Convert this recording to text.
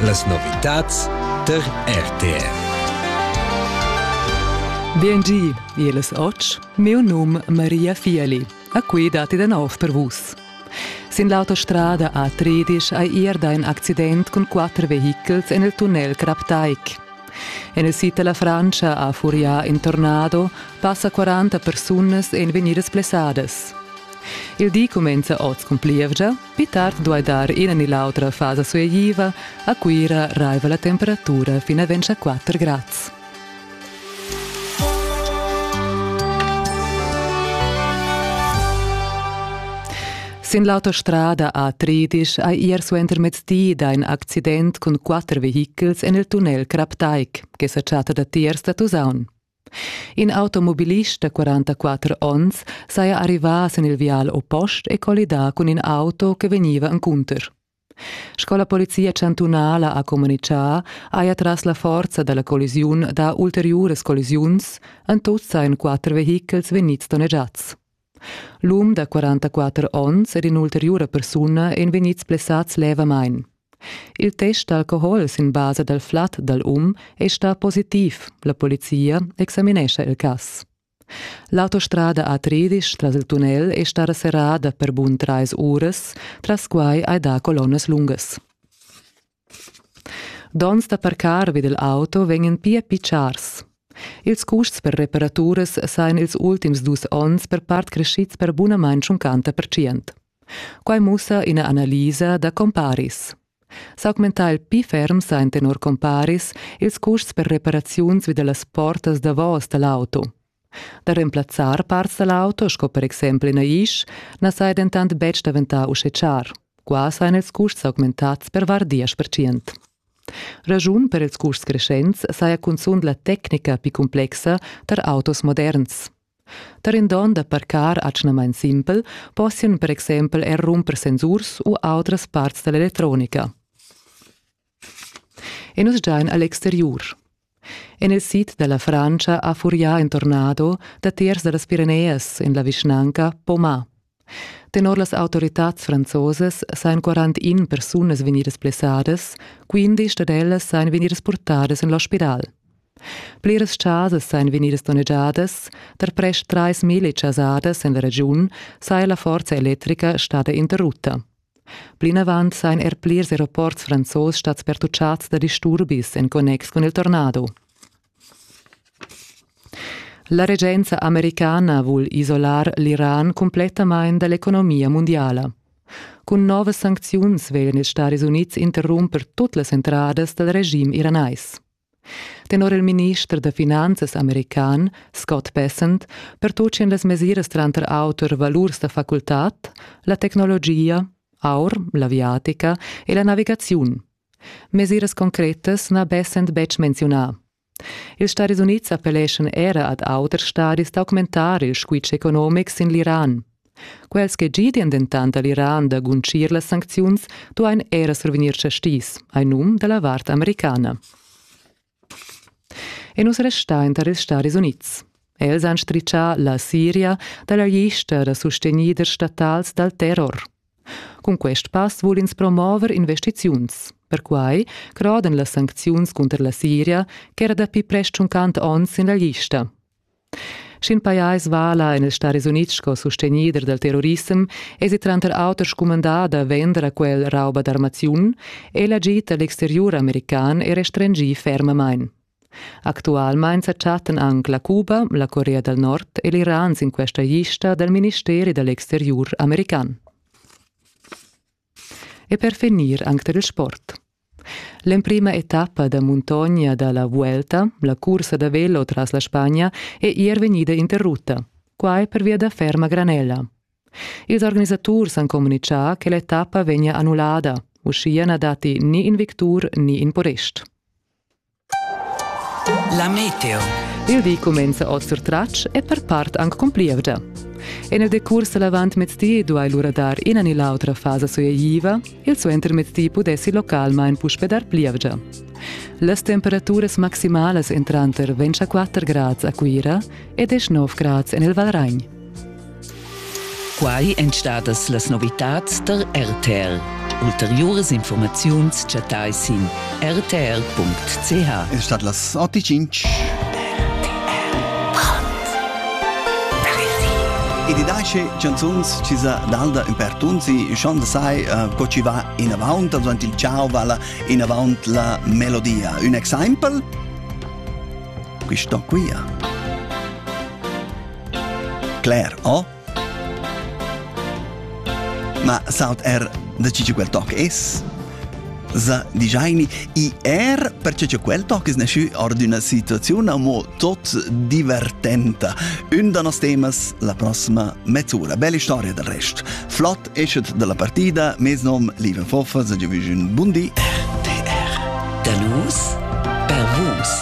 Las novitads der RTR. Biengi, els ots, meu num Maria Fieli, a qui dati de nov per vus. Sin l'autostrada A13 hai erda in accident con quatter vehichels en il tunnel Kraptaik. En il sito la Francia a Furia in Tornado passa 40 persunas en venidas plessadas. Il di comenza oz con plievgia Pli tard duai dar ina ni l'autra fasa sueigliva. A Cuira raiva la temperatura fin a ventg a quatter grads. Sin l'autostrada a Tridisch hai ier suentermezdi dà in accident cun quatter vehichels en il tunnel Kraptaik, che sa chatta datiers da Tusaun. In automobilist da 44 onns saja arrivà sin il vial oppost e collidà cun in auto che vegniva encunter. Sco la polizia chantunala ha communitgà, haja tras la forza da la collisiun dà ulteriuras collisiuns, en tut sajan quatter vehichels vegnids donnegiads. L'um da 44 onns ed in'ulteriura persuna ein vegnids blessads levamain. Il test d'alcohol sin basa dal flat dal um è stà positiv. La polizia examinescha il cass. L'autostrada A13 tras il tunnel è stata serrada per bun trais uras, tras quai hai dà colonnas lungas. Donns da parcar vid il auto vegnan pia pitschars. Ils custs per reparaturas sajan ils ultims dus onns per part creschids per bunamain tschuncanta percient. Quai mussa ina analisa da comparis. S'augmentar il pli ferm sa en tenor comparis ils custs per reparaziuns vid las portas davos da l'auto. Da remplazzar parts dal auto, sco per exempel ina isch, na saja dentant betg daventà uschè char. Qua sajan ils custs augmentads per var diesch percent. Raschun per ils custs creschents saja cunzunt la tecnica pli cumplexa tar autos moderns. Tar in don da parcar atgnamain simpel possian per exempel er rumper sensurs u autras parts da l'electronica. E nus giain a l'exteriur. En il sid da la Frantscha ha furià in tornado datiers da las Pireneas en la vischnanca Poma. Tenor las autoritads franzosas sajan 41 persunas vegnidas blessadas, 15 dad ellas sajan vegnidas purtadas en l'ospital. Pliras chasas sajan vegnidas donnegiadas, tar prest trais mila chasadas en la regiun saja la forza electrica stada interrutta. Plinavant sajan er plirs aeroports franzos stads pertuchads da disturbis en connex cun il tornado. La regenza americana vul isolar l'Iran cumplettamain da l'economia mundiala. Cun novas sancziuns veglan ils Stadis Unids interrumper tut las entradas dal regim iranais. Tenor il minister da finanzas american Scott Bessent pertutgien las mesiras tranter auter valurs da facultad, la tecnologia, aur, l'aviatica e la navigaziun. Mesiras concretas n'ha Bessent betg menziunà. Ils Stadis Unids appelleschan era ad auters stadis d'augmentar il squitsch economic sin l'Iran. Quels che gidian dentant all'Iran da guntgir las sancziuns duain era survegnir chastis, hai num da la vart americana. E nus restain tar ils Stadis Unids. Els han stritgà la Siria da la lista da sustegnider statals dal terror. Cun quest pass vul ins promover investiziuns. Perquai crodan las sancziuns cunter la Siria ch'era dapi prest tschunquant onns sin la lista. Sch'in pajais vala en il Staris Unids sco sustegnider dal terrorissem, èsi tranter auter scumandà da vender a quel rauba d'armaziun, è l'agid da l'exteriur american è restringì fermamain. Actualmain sa chattan anc la Cuba, la Corea dal Nord e l'Iran sin questa lista dal ministeri da l'exteriur american. e per finir anc tar il sport. L'emprima etappa da muntogna da la Vuelta, la cursa da velo tras la Spagna, è ier vegnida interrutta, quai pervia da ferma granella. Ils organisaturs han communitgà che l'etappa vegnia annullada, uschia na datti ni in victur ni in podest. La meteo. Il di cumenza oz sur tratsch e per part anc con plievgia. En il decurs l'avantmezdi duai lura dar ina ni l'autra fasa sueitiva, il suentermezdi pudessi localmain puspe dar plievgia. Las temperaturas maximalas entranter 24 grads a Cuira e 19 grads en il Valragn. Quai èn stadas las novitads tar RTR. Ulteriuras informaziuns chattai sin rtr.ch. Es stat las 8.05. Ed i dace canzuns ci sa dalda in per tunzi, schon da sai, uh, co ci va in avant, also il ciao vala in avant la melodia. Un exemple? Questo qui. Claire O. Ma saut er da ciò quel toc es? sa digiaini i er perche che quel toc es nasciu or d'una situazione amo tot divertenta. Un da nos temas la prossima mezz'ora. Bella storia del rest. Flott eschet dalla partida, mes nom Lieben Foffa, sa giovüs un bundi. RTR. Da los per vos.